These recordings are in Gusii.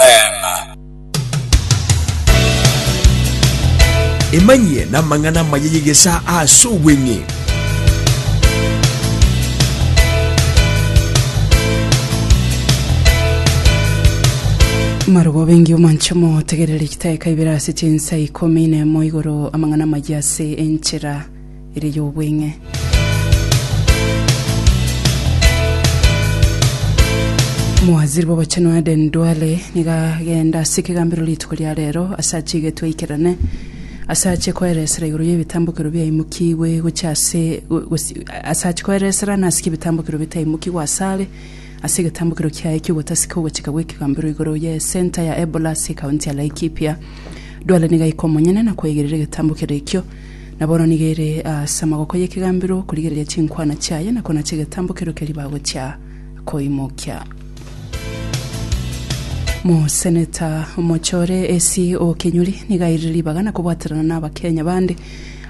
Amen. Emanyie namang'ana amaya y'egesaa aase obweng'e. Marubo bengi omanche motegerere chitaeka ibere ase chinsa ikomi nemo igoro amang'ana amaya ase enchera ere y'obweng'e. Omowaziri bw'Obochenu Aden Duale nigo agenda ase ekegambero rituko ria rero ase achie getwaikerane ase achie koeresera igoro y'ebitambokero biaimokigwe gochia ase ase achie koeresera nasike ebitambokero bitaimokigwe asare ase egetambokero kiaye ki'ogotaseka ogochika gw'ekegambero igoro ye center ya Ebola ase ekaunti ya Laikipia. Duale nigo aike omonyene na kweigerera egetambokero ekio Na bono nigo ere ase amaboko y'ekegambero korigereria chinkwana chiaye na konacha egetambo keria keria bagochia koimokia. Moseneta omochore Essie Okinyuri nigo airire ribaga na kobwaterana na Abakenya bande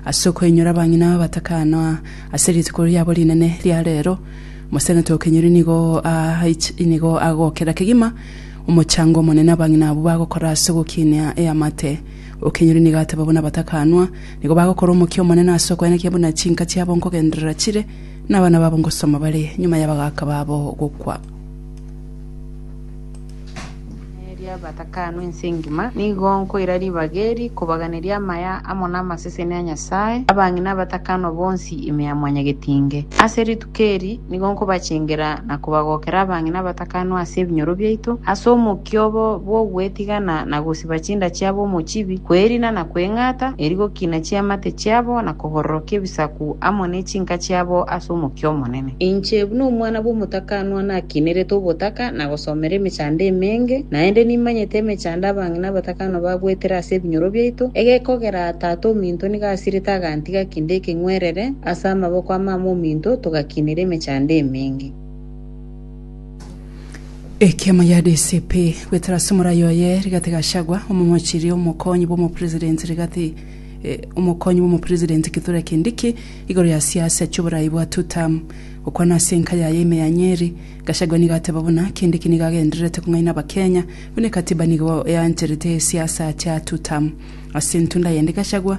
ase okoinyora abang'ina batakanwa ase rituko riabo rinene ria rero. Moseneta Okinyuri nigo aich- nigo agokera kegima omochango omonene abang'ina abwo bagokora ase ogokinia eamate Okenyori nigo ateba buna batakanwa, nigo bagokora omokia omonene ase okwenekia buna chinka chiabo nkogenderera chire, na abana babo nkosoma bare nyuma y'abagaaka babo gokwa. Ring'ana eria batakanwa ense engima, nigo nkoira ribaga eri kobaganeria amaya amo namaseseni a Nyasae, abang'ina abatakanwa bonsi ime ya Mwanyagetinge. Ase rituko. Keri, nigo nkobachengera na kobagokera abang'ina abatakanwa ase ebinyoro biaito, ase omokia obo bw'ogwetigana na gosiba chinda chiabo omochibi, kwerina na kweng'ata, eri gokina chiamate chiabo na kobororokia ebisaku amo ne chinka chiabo ase omokia omonene. Inche, buna omwana bw'omotakanwa, nakinerete obotaka na gosomera emechando emenge, naende nimanyete emechando abang'ina abatakanwa bagoetera ase ebinyoro biaito, egekogera Tata ominto nigo asirete agantiga kende ekeng'werere, Ase amaboko a mama ominto togakinera emechando emenge. Ekiama gia DCP goetera ase omorai oye Rigathi Gachagua, omomochirie omokonyi bw'omopresident Rigathi eh, omokonyi bw'omopresident Kithure Kindiki igoro ya siasa chi'oborai bwa two term. Gokwana ase enka yaye ime ya Nyeri, Gachagua nigo ateba buna Kindiki nigo agendererete kong'aina Abakenya buna ekatiba nigo eancherete siasa chia two term. Ase entunda yende Gachagua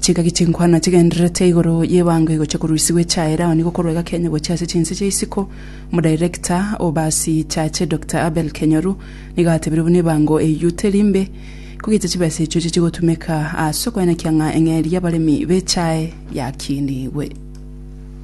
Chingaki chinkwana chigendererete igoro y'ebango egochia korusigwa echaere, ao nigo korwa egaka enye gochia ase chinse chia isiko. Omodirector o basi chache Doctor Abel Kenyoru nigo atebire buna ebango eyio teri mbe, kogeita chibesa echio echi chigotumeka ase okoenekia ng'a eng'eria y'abaremi b'echae yakinigwe.